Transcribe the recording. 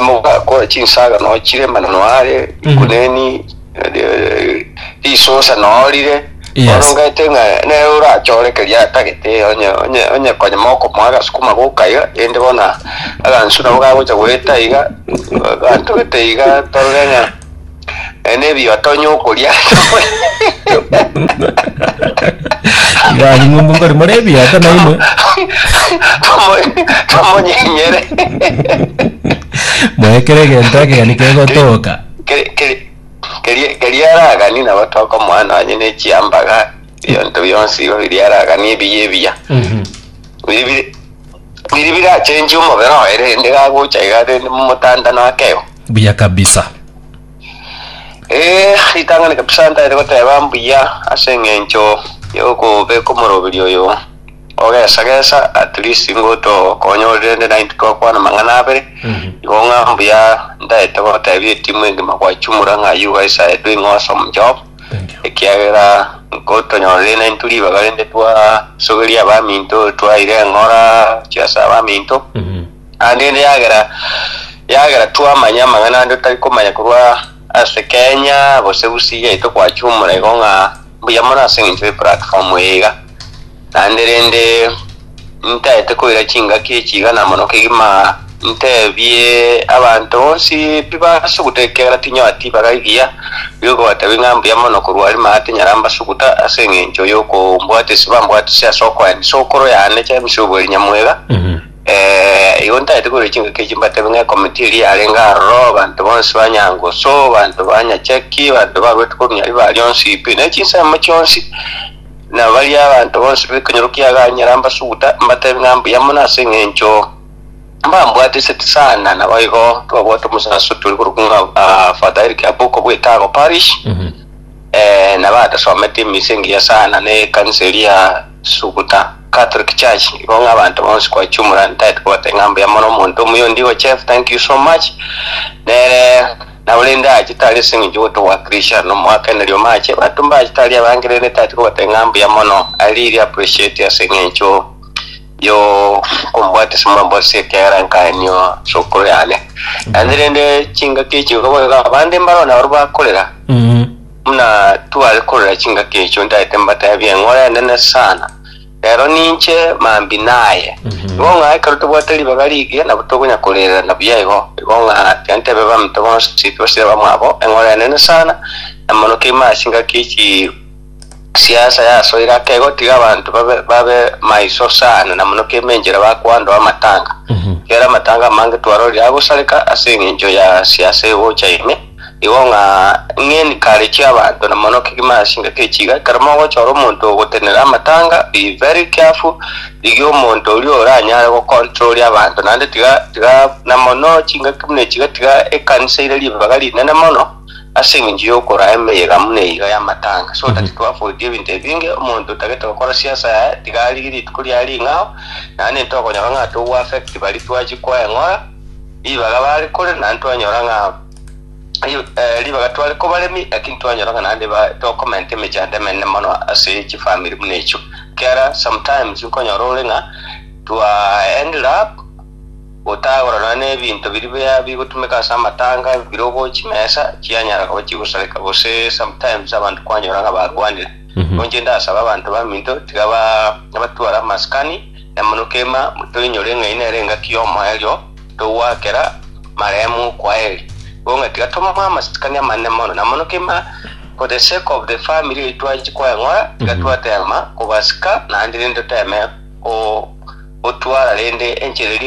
mogakora chinsaga nochire mana noare Mhm. kuneni eh, risusa norire Yes. bono ngete ng'a nere orachore keria atagete onye onye onye konya mokomoa agasukuma gokaiga ende bona agansu nabo gagocha goeta iga gantogete iga torore ng'a Ene ebi otonya okoria ase Ngaki ng'umbu nkori more ebiata na inwe. Tomo- tomonyenyere Moekere egento ekegani kegotoka. Keri- keri- keri- keria aragani nabo tokomoa nonye ne chiambaga ebinto bionsi igo biria aragani ebiya ebiya biri biri biri birachenchie omobere oye rende gagocha iga rende momotanda nakeo Mbuya kabisa. Ee, ritang'ani kabisa ntaete goteba mbuya ase eng'encho yokobeka omoroberi oyo ogesa gesa at least ngotokonyorire ende naye ntitwakwana amang'ana abere igo ng'a mbuya ntaete gotebia etimu engima gwachumura ng'a you guys are doing awesome job Thank you. ekiagera nkotonyorire naye nturi ribaga rinde twasoberia abaminto twaire eng'ora chiasa abaminto Mhm. Naende inde yagera yagera twamanya amang'ana ande totari komanya korwa ase Kenya gose Gusii yaito gwachia omorego ng'a mbuya mono ase eng'encho ye platform eye iga. Naende rende ntaete koira chingaki echi iga na mono kegima ntebie abanto bonsi pi basuguta ekiagera tinyora tibaga egiya gio kobatebi ng'a mbuya mono korwa aria maya tinyara mbasuguta ase eng'encho yokombwatesi bambwatisi ase okoenisa okoro yane chemisobu eri nyamwega. Eh, igo ntagete korwa chingaki echi mbatebe ng'a ekomiti eria yarenge aroro, abanto bonsi ba Nyangusu, abanto ba Nyachaki, abanto baruete korwa Nyari ba rionsi pi, ne chinsemo chionsi, na baria abanto bonsi b'ekonyoro kia Ganyera mbasuguta, mbatebie ng'a mbuya mono ase eng'encho mbambwatiseti sana, naboigo twabwate omosaso tore korwa ng'a ah, Father Eric Aboko bwa Etago Parish, Mhm. eh, nabo atasomete emisa engiya sana ne ekanisa eria Suguta. Catholic church igo ng'a abanto bonsi kwachumura ntaete kobata ing'a mbuya mono omonto omuya ondigo chef thank you so much nere na orende ache tari ase eng'encho gotobwakirisha nomoakaneri omache bato mbache tari abange rende ntaete kobata ing'a mbuya mono i really appreciate ase eng'encho yo kombwate ase mwamborisia ekiagera nkaenio ase okoro yane naende rende chingaki echi igo bono iga abande mbaro nabaria bakorera Buna tware korora chingaki echio, ndaete mbateebie, eng'ora enene sana, rero ninche mambia naye. Igo ng'a ekero tobwate ribaga rigiya, nabo tokonya koreererana buya igo. Igo ng'a tiga nteebe abaminto bonsi tibasire abamwabo, eng'ora enene sana, na mono keima ase ingaki ya chisiasa yasoire ake igo, tiga abanto babe babe maiso sana, na mono keima enchera bakoandoa amatanga. Ekiagera amatanga amange twarorire agosareka ase eng'encho ya siasa egocha ime. Igo ng'a ng'eni kare chi'abanto na mono kegima ase engaki ye chiga, ekero mogochora omonto ogotenena amatanga, be very careful, rigia omonto oria oranyare go control abanto, naende tiga tiga na mono chingaki buna echi iga tiga ekanisa ere ribaga rinene mono, ase eng'encho ya okoraa emeyega muna eyio y'amatanga, so that to avoid ebinto ebinge, omonto otagete gokora siasa yaye, tiga arigie rituko riaye ring'ao, naende intwe okonyora ng'a togo affect baria twachia koeng'ora. Ribaga bare kore naende twanyora ng'a eh, ribaga tware kobaremi, lakini twanyora ng'a naende ba- tokomenta emechando emenene mono ase chifamiri buna echio kera sometimes nkonyora ore ng'a twa ended up otagora nonya na ebinto biri bia bigotumeka ase amatanga birogo chimesa chianyara koba chigosareka gose sometimes abanto kwanyora ng'a barwanire Mhm. Nabo inche ndasaba abanto baminto tiga ba- batware amaskani na mono kegima toinyore ng'ai nere engaki y'omoerio togoakera marehemu kwaheri, nigo ng'a tiga tomoe amasikani amanene mono, na mono kegima for the sake of the family eyio twanchi koeng'ora, tiga twateema kobasika, naende rende toteeme ko- gotwara rende enchera eria